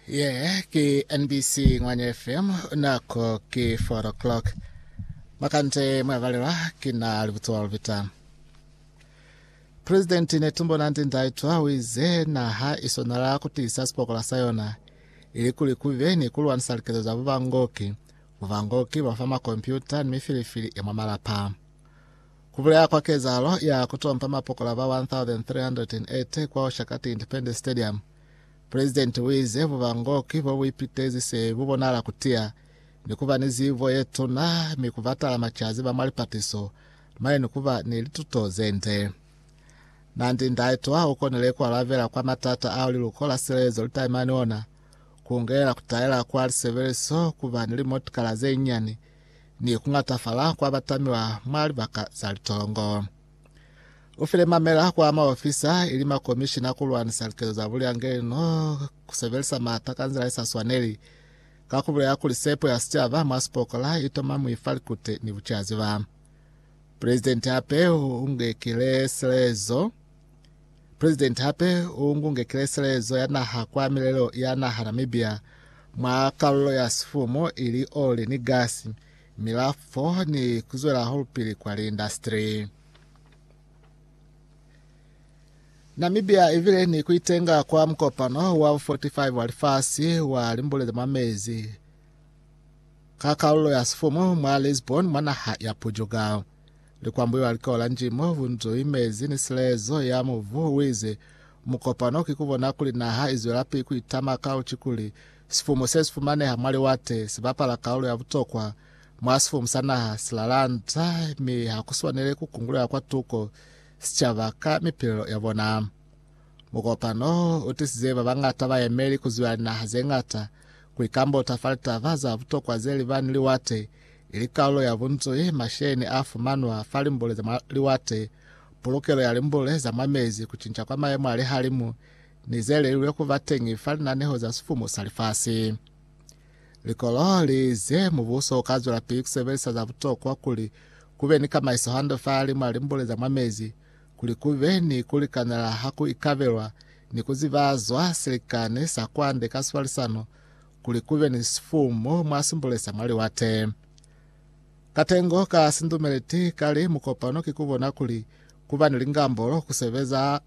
Ye ke NBC Ngwanya FM nako ke 4 o'clock. Makante mwavalelwa kina libutswa lupita. President Netumbo Nandi Ndaitwa wize naha isonala kutisa sipokola sa yona ili kuli kube ni kulwanisa likezo za bubangoki, bubangoki bwa fa makompyuta ni mifilifili ya mwa malapa. Ku bulaya kwa kezahalo ya ku tompa mapokola ba 1,380 kwa Oshakati Independence Stadium, Pulezidenti u ize bubangoki bo bu ipitezi se bu bonahala ku tiya ni ku ba ni zibo ye tuna mi ku batala macazi ba mwa lipatiso mane ni ku ba ni lituto ze nde. Nandi-Ndaitwah u konile ku alabela kwa matata ao liluko la silelezo li taimani ona, ku ngelela ku taela kwa lisebeliso ku ba ni limotikala ze nyani ni kuñatafala kwa batamiwa mwa libaka za litongo. Ufile mamela kwa maofisa ili makomishina kulwanisa likezo za buliangeli no kusebelisa maata ka nzila isaswaneli, ka kubulela kuli sepo ya sicaba mwa sipokola itoma mwi fa likute ni bucaziba. Presidenti hape uungekile silaezo Presidenti hape u ngunge kileselezo ya naha kwa milelo ya naha Namibia mwa kalulo ya sifumo ili oli ni gasi, milafo ni kuzwela holupili kwa liindastri. Namibia ivile ni kuitenga kwa mukopano wa 45 wa lifasi wa limbule za mwa mezi ka kalulo ya sifumo mwa Lisbon mwa naha ya Portugal. Likwambuyo ha li kola nji mo bu nzo imezi ni silezo ya mubu, u ize, Mukopano ki ku bona kuli naha i zwelapi ku itama ka uci kuli sifumu se si fumaneha mwa liwate si bapala kaulu ya butokwa mwa sifumu sa naha silalanda mi ha ku swanele ku kungulela kwa tuko sicaba ka mipilelo ya bona. Mukopano u tisize ba bañata bayemeli ku zwiba linaha ze ñata ku ikambota fa litaba za butokwa ze li ba ni liwate Ili kalulo ya bunzwi masheni a fumanwa fa limbule za mwa liwate, pulukelo ya limbule za mwa mezi, ku cinca kwa mayemo a lihalimu, ni ze lelilwe ku ba teñi fa linaneho za sifumu sa lifasi. Likolo li ize mubuso u ka zwelapili ku sebelisa za butokwa kuli ku be ni kamaiso hande fa limwa limbule za mwa mezi, kuli ku be ni ku likanela ha ku ikabelwa ni ku zibazwa silikani sa kwande ka swalisano, kuli kube ni sifumu mwa simbule sa mwa liwate. Katengo ka sindumeleti kali mukopano ki kubona kuli kuba ni lingambolo kusebeza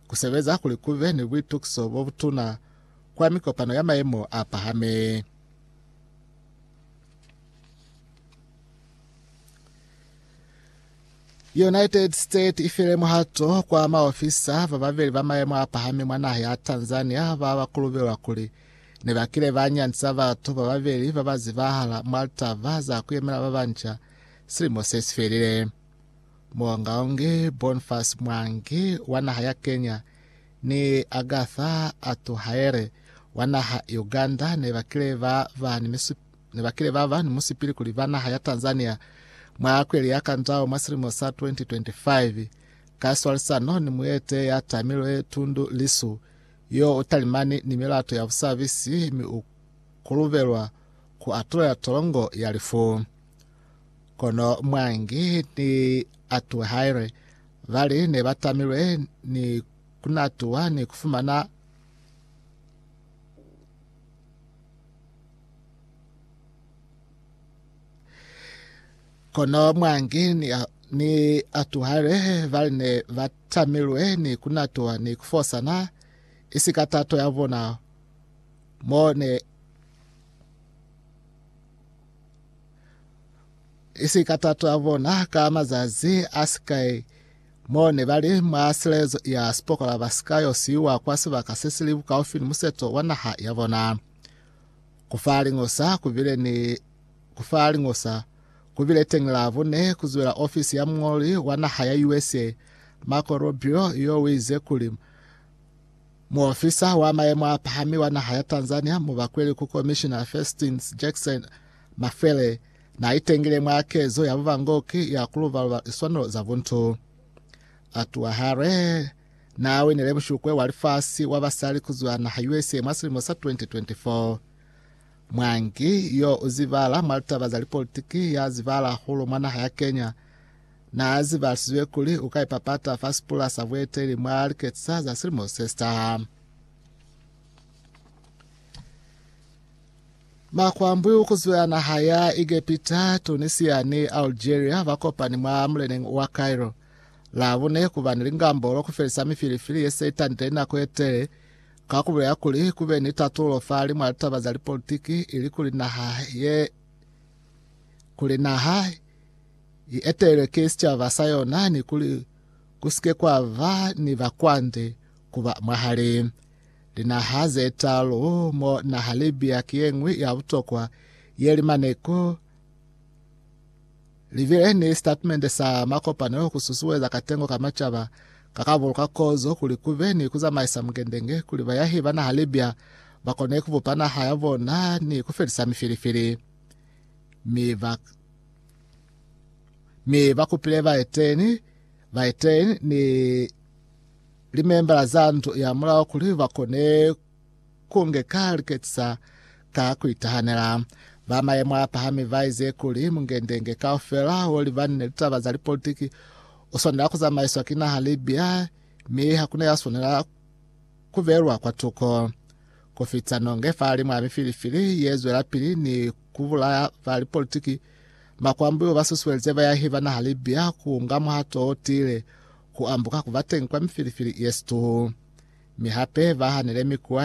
kusebeza kuli kube ni buitukiso bobutuna kwa mikopano ya mayemo a pahami. United States i file muhato kwa maofisa ba babeli ba maemo a pahami mwa naha ya Tanzania ba ba kulubelwa kuli ne ba kile ba nyandisa batu ba babeli ba ba zibahala mwa litaba za ku yemela ba banca silimo se si felile. Muongaongi Boniface Mwangi wa naha ya Kenya ni Agatha Atuhaire wa naha Uganda ne ba kile ba ba ni misupo ne ba kile ba ba ni musipili kuli ba naha ya Tanzania mwa kweli ya Kandao mwa silimo sa 2025 ka swalisano ni muete ya tamilwe Tundu Lissu yo u talimani ni milato ya busabisi mi u kulubelwa ku atulela tolongo ya lifu. Kono Mwangi ni atuwe haile ba li ne ba tamilwe ni kunatuwa ni kufumana Kono mwangi ni, a, ni atuhale bali ne ba tamilwe ni kunatuha ni kufosana, isi ka tato ya bona, mo ne isi ka tato ya bona ka mazazi a sikai mo ne bali mwa silezo ya sipokola ba sika yo siwa kwa sibaka se sili bukaufi ni museto wa naha ya bona. Ku fa liñosa ku bile ni ku fa liñosa ku bile teñi Labone ku zwela ofisi ya muñoli wa naha ya USA, Marco Rubio, yo u ize kuli, Muofisa wa mayemo a pahami wa naha ya Tanzania mu bakweli ku Komishina Festins Jackson Mafele na itengile mwa kezo ya bubangoki ya ku luba-luba liswanelo za buntu. Atuahare Naa winile mushukwe wa lifasi wa basali ku zwa naha USA mwa silimo sa 2024. Mwangi yo u zibahala mwa litaba za lipolitiki ya zibahala hahulu mwa naha ya Kenya naa zibahalisiziwe kuli u ka ipapata fa sipula sa bueteli mwa liketisa za silimo se si taha. Makwambwiu ku zwa naha ya Egepita, Tunisia ni Algeria ba kopani mwa muleneng wa Cairo. Labune kuba ni lingambolo kufelisa mifilifili yese itandile inako yetele, ka kubulela kuli kube ni tatulo fahali mwa litaba za lipolitiki ili kuli naha ye kuli naha ietelelwe ki sicaba sa yona ni kuli kusike kwaba ni bakwande kuba mwahali linaha zetalu mo naha Libya ki yeñwi ya butokwa ye limaneko Libileni sitatimende sa makopano ku susueza katengo ka macaba ka ka buluka kozo kuli ku be ni ku zamaisa mungendenge kuli bayahi ba naha Libya ba kone ku bupa naha ya bona ni ku felisa mifilifili. Mi ba mi ba kupile baeteni baeteni ni limembala za ndu ya mulao kuli ba kone Ku nge ka lu ketisa ka ku itahanela. Ba mayemo a pahami ba ize kuli, Mungendenge kaufela wo liba ni litaba za lipolitiki u swanela ku zamaiswa ki naha Libya, mi ha ku na ya swanela ku belwa kwa tuko. Ku fita nonge fahali mwa mifilifili ye zwelapili ni ku bulaya ba lipolitiki, makwambuyu ba susuelize bayahi ba naha Libya ku nga muhato o tiile ku ambuka ku ba teñi kwa mifilifili ye situhu, mi hape ba hanile mikuwa